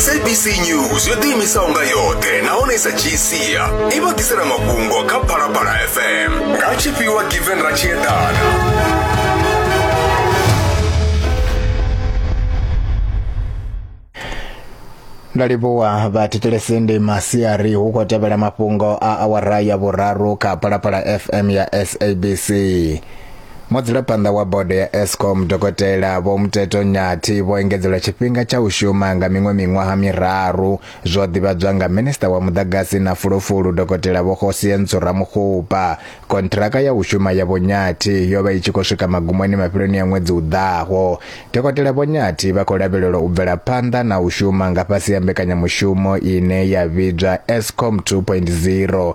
sabc news yo ḓiimisaho nga yoṱhe nahone sa dzhii sia i vha ḓisela mafhungo kha phalaphala fm nga tshifhiwa given ra tshi eḓana ndo livhuwa vhathetshelesi ndi masiari hu khou tevhela mafhungo a awara ya vhuraru kha phalaphala fm ya sabc Mudzulaphanda wa bodo ya Eskom dokotela Vho Mteto Nyathi vho engedzelwa tshifhinga tsha u shuma nga miṅwe miṅwaha miraru zwo ḓivhadzwa nga minista wa muḓagasi na fulufulu dokotela Vho Kgosientso Ramokgopa. Kontraka ya u shuma ya Vho Nyathi yo vha i tshi khou swika magumoni mafheloni a ṅwedzi u ḓaho. Dokotela Vho Nyathi vha khou lavhelelwa u bvela phanḓa na u shuma nga fhasi ha mbekanyamushumo ine ya vhidzwa Eskom 2.0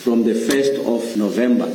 from the 1st of November.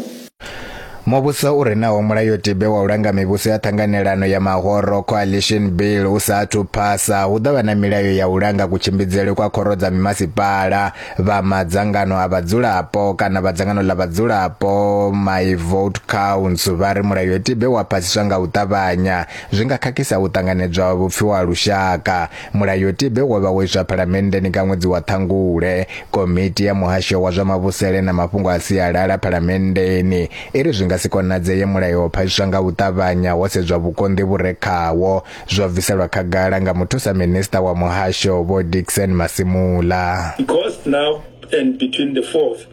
Muvhuso u re naho mulayotibe wa u langa mivhuso ya ṱhanganelano ya mahoro coalition bill u sa athu phasa hu ḓo vha na milayo ya u langa kutshimbidzele kwa khoro dza mimasipala vha madzangano a vhadzulapo kana vha dzangano ḽa vhadzulapo my vote counts vha ri mulayotibe wa phasiswa nga u ṱavhanya zwi nga khakhisa u ṱanganedzwa vhupfiwa lushaka Mulayotibe wo vha wo iswa Phalamenndeni nga ṅwedzi wa Ṱhangule. Komiti ya Muhasho wa zwa Mavhusele na Mafhungo a Sialala Phalamenndeni i ri zwi nga si konadzee mulayo wa phasiswa nga u ṱavhanya ho sedzwa vhukonḓi vhu re khawo, zwo bviselwa khagala nga Muthusa Minisṱa wa Muhasho Vho Dickson Masimula. Because now and between the 4th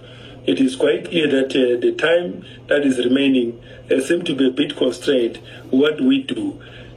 it is quite clear that uh, the time that is remaining uh, seem to be a bit constrained. What do we do?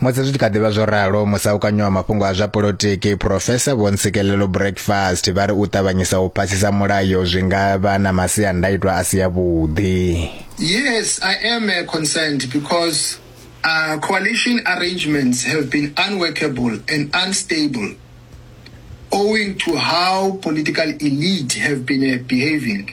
musi zwi tshi kha ḓivha zwo ralo musaukanyo wa mafhungo a zwa polotiki profesa vho ntsikelelo breakfast vha ri u ṱavhanyisa u phasisa mulayo zwi nga vha na masiandaitwa a si ya vhuḓi yes i am uh, concerned because uh, coalition arrangements have been unworkable and unstable owing to how political elite have been uh, behaving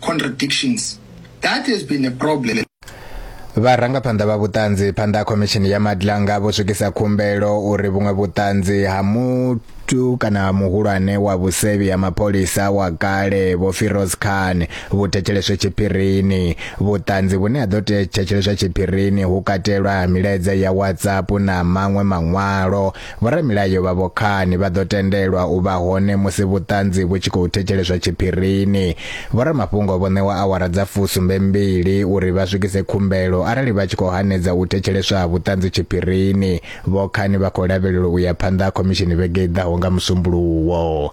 contradictions. That has been a problem. Vharangaphanḓa vha vhuṱanzi phanḓa ha khomishini ya Madlanga vho swikisa khumbelo uri vhuṅwe vhuṱanzi ha muthu kana muhulwane wa vhusevhi ha mapholisa wa kale Vho Firoz Khan vhu thetsheleswe tshiphirini. Vhuṱanzi vhune ha ḓo thetsheleswa tshiphirini hu katelwa milaedza ya WhatsApp na maṅwe maṅwalo Vhoramilayo vha Vhokhani vha ḓo tendelwa u vha hone musi vhuṱanzi vhu tshi khou thetsheleswa tshiphirini. Vhoramafhungo vho ṋewa awara dza fusumbe mbili uri vha swikise khumbelo arali vha tshi khou hanedza u thetsheleswa ha vhuṱanzi tshiphirini. Vhokhani vha khou lavhelelwa u ya phanḓa ha khomishini vhege i ḓaho nga Musumbuluwo.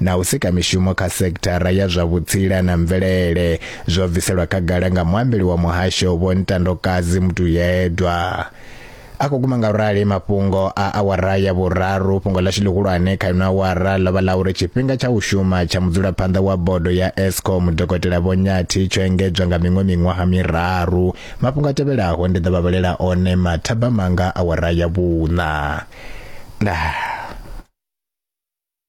na u sika mishumo kha sekithara ya zwa vhutsila na mvelele zwo bviselwa khagala nga muambeli wa muhasho Vho Ntandokadzi Mutuyedwa a khou guma nga rali mafhungo a awara ya vhuraru fhungo ḽashu ḽihulwane kha ino awara ḽo vha ḽa uri tshifhinga tsha u shuma tsha mudzulaphanḓa wa bodo ya escom dokotela vho nyathi tsho engedzwa nga miṅwe miṅwaha miraru mafhungo a tevhelaho ndi ḓo vha vhalela one mathaba manga awara ya vhuṋa nah.